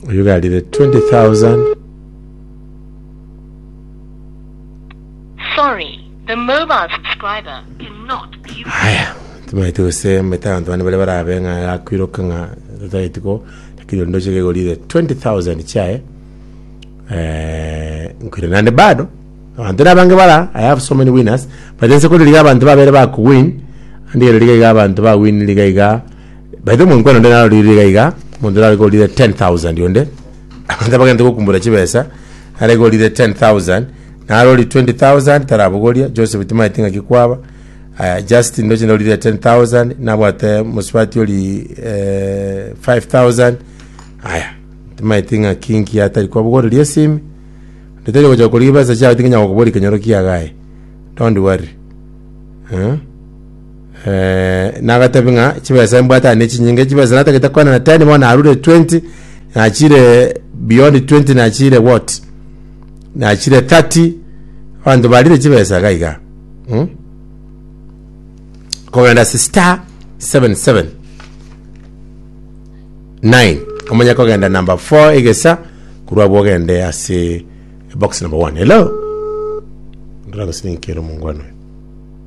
Oyuga arire 20,000. Sorry, the mobile subscriber cannot be reached. Haya, timaete gose mete abanto bane bare barabe ng'a yakwiroka ng'a totageti ko lakini onde oche kegorire 20,000 chiaye eh, nkwire nande bado abanto nabange bara I have so many winners but ense kore riga abanto babere bakowin andigere riga iga abanto bawin riga iga By the way, omonkwena onde narorire iga iga, omonto nare korire 10,000 onde, abanto abagente gokumbora chibesa, nare korire 10,000, narori 20,000 tarabogoria, Joseph timaeti ng'aki kwaba, aya Justin ndoche ndorire 10,000, nabwate mosubati ori eh, 5,000, aya timaeti ng'aki nki atari kwabogoreria esimi, ndetari gocha korigia besa chiao tingenya gokoboria kenyoro kiagaye, don't worry. Eh? nagatebi ng'a chibesa mbwate aye nechinyinge chibesa natagete kwana na ten bono narure twenty nachire beyond twenty nachire what nachire thirty abanto barire chibesa iga iga mm? kogenda ase star seven seven nine omanye kogenda number four egesa korwa abwo ogende ase box number one hello ndora gose ninkere omongwana oyo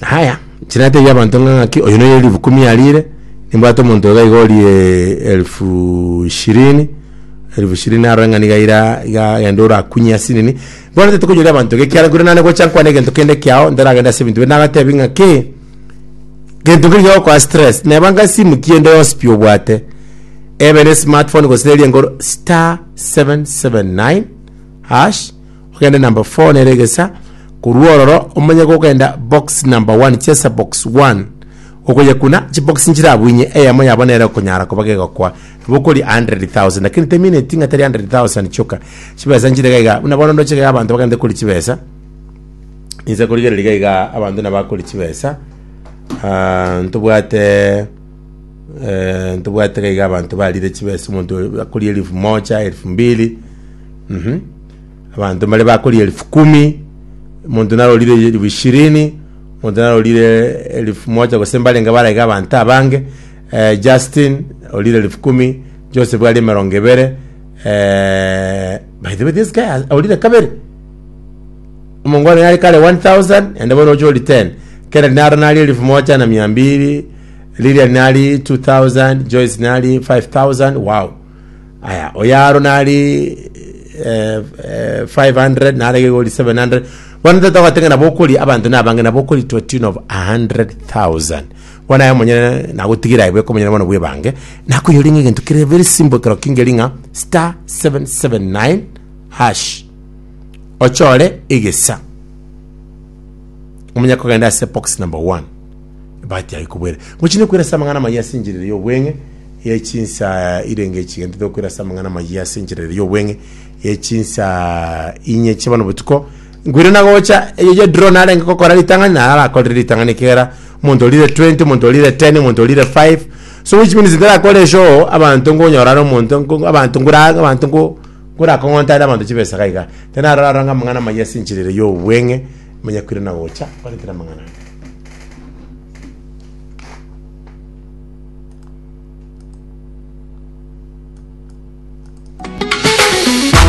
Haya, chira natebia abanto ng'a ng'aki, oyo noyo elifu kumi arire, nimbwate omonto iga iga orie elfu ishirini, elfu ishirini arore ng'a niga ira iga genda orakunye ase nini, bono tataeti konyoria abanto iga ekiagera nkore naende gocha nkwane egento kende kiao ntaragende ase ebinto binde, nagatebia ng'a ki, gento keria kegokoa stress, nebanga esimu ki ende yonsi pi obwate, ebe ne esmart phone gose eria engoro, star seven seven nine hash. Ogende number four nere egesa korwa ororo omonye gokenda box number one chesa box one okoyekuna chibox nchire abu inye eyemo yabo nere okonyara koba gegokwa bokori 100,000 lakini temineti ng'a tari 100,000 choka chibesa nchire gaiga buna bono ndoche gaiga abanto bagende kori chibesa inse korigereria gaiga abanto nabakori chibesa ah, ntobwate eh, ntobwate gaiga abanto barire chibesa omonto akori elifu moja elifu mbili mhm Abanto mbare bakorire elifu kumi, omonto narorire elifu ishirini, omonto narorire elifu moja, gose mbarenge baraiga abanto abange. Eh, Justin orire elifu kumi, Joseph arire emerongo ebere, eh, by the way this guy has- orire kabere omongo one nare kare 1000 ende bono oche ori 10 kennedy naro nari elifu moja na mia mbiri lilian nari 2000 joyce nari 5000 wow Aya, oyaro nari eh, eh, 500 nare gegori 700 bono tata ogatenge nabo okori abanto nabange nabo okori to a tune of 100000 bono aye omonyene nagotigira aye bweka omonyene bono bwebange nakoyori ng'a egento kere very simple kero kingeri ng'a star 779 hash ochore egesa omonye kogenda ase box number 1 Batiage kobwera, Mochine kwera ase amang'ana amayia ase enchera ere y'obweng'e ye chinsa inye inge chigento tokwera ase amang'ana amayia ase enchera ere y'obweng'e ye chinsa inye chia bono botuko. Nkwire na gocha eyo ye drone arenge gokora ritang'ani na arakorire ritang'ani kera omonto orire 20 omonto orire 10 omonto orire 5 so which means ntarakore show abanto nkonyora are omonto nko abanto nkora abanto nko nkorakong'ota are abanto chibesa iga iga. Iga naro aroro ng'a amang'ana amayia ase enchera ere y'obweng'e manya kwire na gocha kore kera amang'ana aya.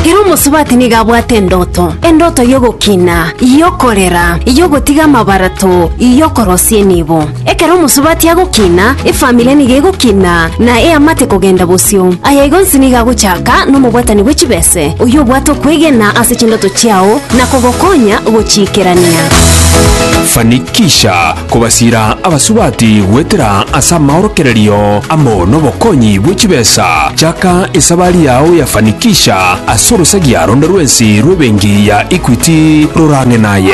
Ere omosubati nigo abwate endoto, endoto y'ogokina, y'okorera, y'ogotiga amabarato, y'okorosia enibo. Ekero omosubati agokina, efamiri nigo egokina, na eamate kogenda bosio. Aya igo nsinige agochaka nomobwatani bwe chibesa. ase oyobwate okwegena ase chindoto chiao na kogokonya gochiikerania. Fanikisha kobasiira abasubati goetera ase amaorokererio amo nobokonyi bwe chibesa. Chaka esabari yao ya Fanikisha ase orosagia ronde rwensi rw'ebenki ya Equity rorang'e naye.